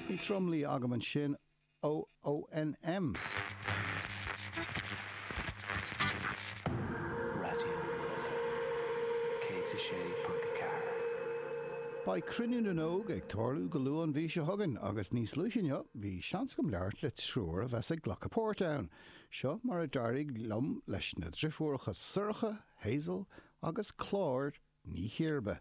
Bhí tromluí agam ansin, ONM! Raidió na Life 106.4. Beidh Cruinniú na nÓg ag tarlú go luath an mhí seo chugainn agus níos luaithe inniu bhí seans agam labhairt le triúr a bheas ag glacadh páirt ann. Seo mar a d'éirigh liom leis na driofúracha Sorcha, Hazel agus Clár Ní Chiarba.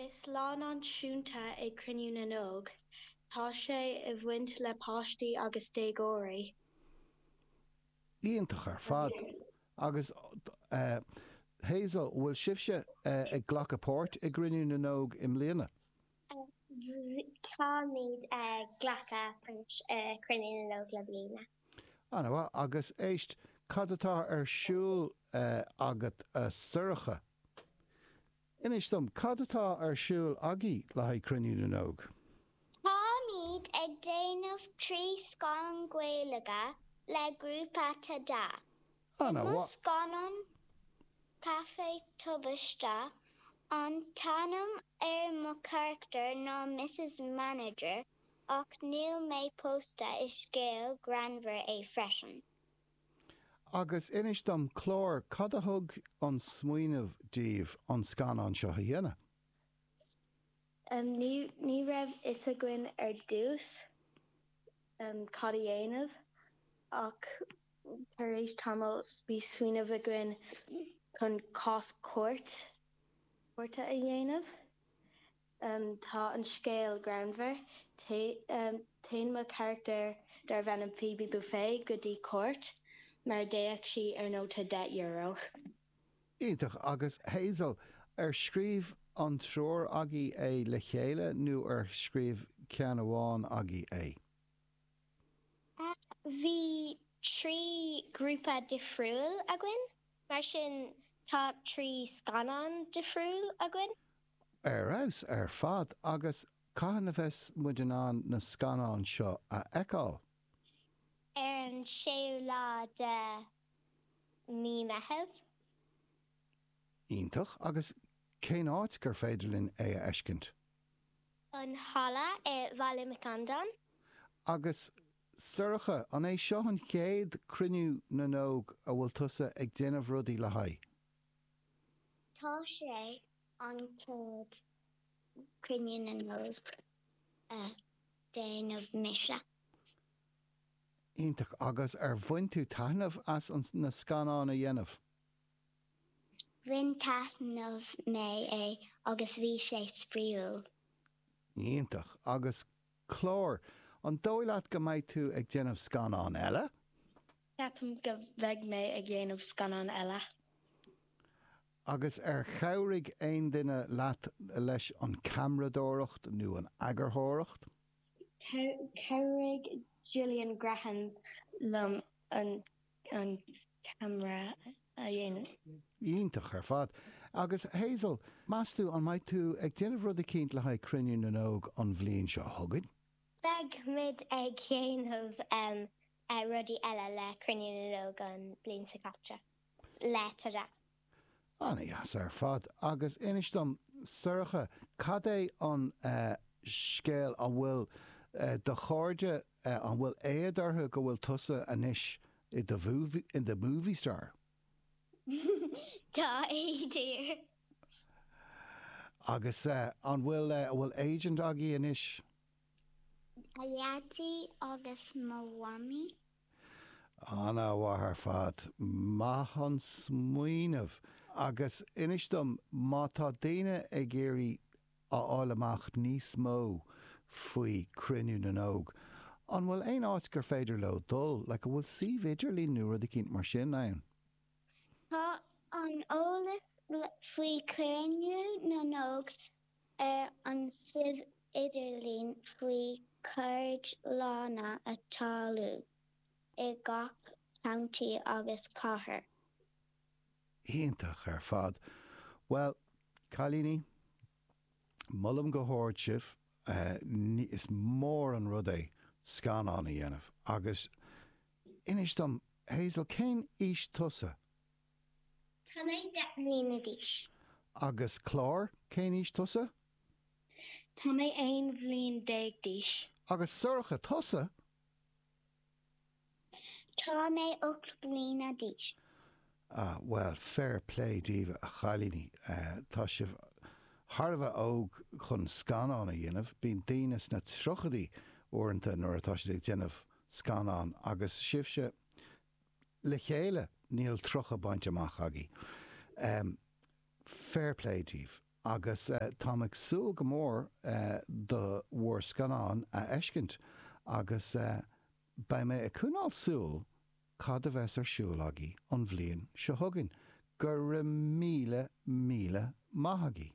Is lá náisiúnta é Cruinniú na nÓg. Tá sé i bhaint le páistí agus déagóirí. Iontach ar fad. Agus eh, Hazel, bhfuil sibhse eh ag glacadh páirt i gCruinniú na nÓg i mbliana? Táimid ag glacadh páirt i Cruinniú na nÓg le bliana. Ana mhaith. Agus éist, cad atá ar siúl eh agat a Shorcha? Inis dom, cad atá ar siúl agaibh le haghaidh Cruinniú na nÓg? Táimíd ag déanamh trí scannán Gaeilge le grúpa Tada. I mo scannán Caife Tubaiste, an t-ainm ar mo charachtar ná Mrs Manager ach níl mé pósta, is scéal greannmhar é freisin. Agus inis dom, Clár, cad a thug an smaoineamh daoibh an scannán seo a dhéanamh? Ní raibh fhios againn ar dtús cad a dhéanamh ach tar éis tamaill bhí smaoineamh againn chun cás cúirt cúirte a dhéanamh. Tá an scéal greannmhar. Téann mo charachtar darbh ainm Phoebe Buffay go dtí cúirt mar a d'fhéach sí ar nóta deich euro. Iontach! Agus Hazel, ar scríobh an triúr agaibh é le chéile nó ar scríobh ceann amháin agaibh é? Bhí trí ghrúpa difriúil againn, mar sin tá trí scannán difriúil againn. Ar fheabhas ar fad agus cathain a bheas muid in ann na scannáin seo a fheiceáil? Ar an séú lá de Mí Meitheamh. Iontach, agus cén áit gur féidir linn é a fheiscint? An halla i Baile Mhic Andáin. Agus Sorcha, an é seo an chéad Cruinniú na nÓg a bhfuil tusa ag déanamh rudaí le haghaidh? Tá sé an chéad Cruinniú na nÓg a déanamh mise. Iontach! Agus ar bhain tú taitneamh as na scannáin a dhéanamh? Bhain taitneamh mé é agus bhí sé spraíúil. Iontach! Agus Clár, An dóigh leat go mbeidh tú ag déanamh scannán eile? Ceapaim go mbeidh mé ag dhéanamh scannán eile. Agus ar chabhraigh aon duine leat leis an ceamradóireacht nó an eagarthóireacht? Chabhraigh Gillian Graham liom an. an ceamara a dhéanamh. Iontach ar fad. Agus Hazel, meastú an mbeidh tú ag déanamh rud eicínt le haghaidh Cruinniú na nÓg an bhliain seo chugainn? Beidh muid ag dhéanamh rudaí eile le Cruinniú na nÓg an bhliain seo caite, le Tadhg. Ana-dheas ar fad. Agus inis dom, Sorcha, cad é an scéal, an bhfuil do chairde, an bhfuil éad orthu go bhfuil tusa anois i do movie star? Tá éad orthu. Agus an bhfuil, an bhfuil agent agat anois? Mo Dhaidí agus mo Mhamaí. Ana-mhaith ar fad, maith an smaoineamh. Agus inis dom, má tá daoine ag iarraidh a fháil amach níos mó faoi Cruinniú na nÓg, an bhfuil aon áit gur féidir leo dul, like, an bhfuil suíomh idirlín nó rud eicínt mar sin ann? Tá an eolas faoi Chruinniú na nÓg Ar an suíomh idirlín faoi cheardlanna atá ar siúl i gach contae agus cathair. Iontach ar fad. Bhuel, cailíní, molaim go hard sibh, is mór an rud é scannán a dhéanamh agus inis dom, Hazel, cén aois tusa? Tá mé deich mbliana d'aois. Agus Clár, cén aois tusa? Tá mé aon bhliain déag d'aois. Agus Sorcha, tusa? Tá mé ocht mbliana d'aois. Ah, bhuel, fair play daoibh, a chailíní. Tá sibh thar a bheith óg chun scannán a dhéanamh. Bíonn daoine sna tríochaidí uaireanta nuair atá siad ag déanamh scannán, agus sibhse, le chéile, níl 30 bainte amach agaibh. Fair play díbh agus táim ag súil go mór le bhur scannán a fheiscint agus beidh mé ag coinneáil súil cad a bheas ar siúl agaibh an bhliain seo chugainn. Go raibh míle, míle maith agaibh!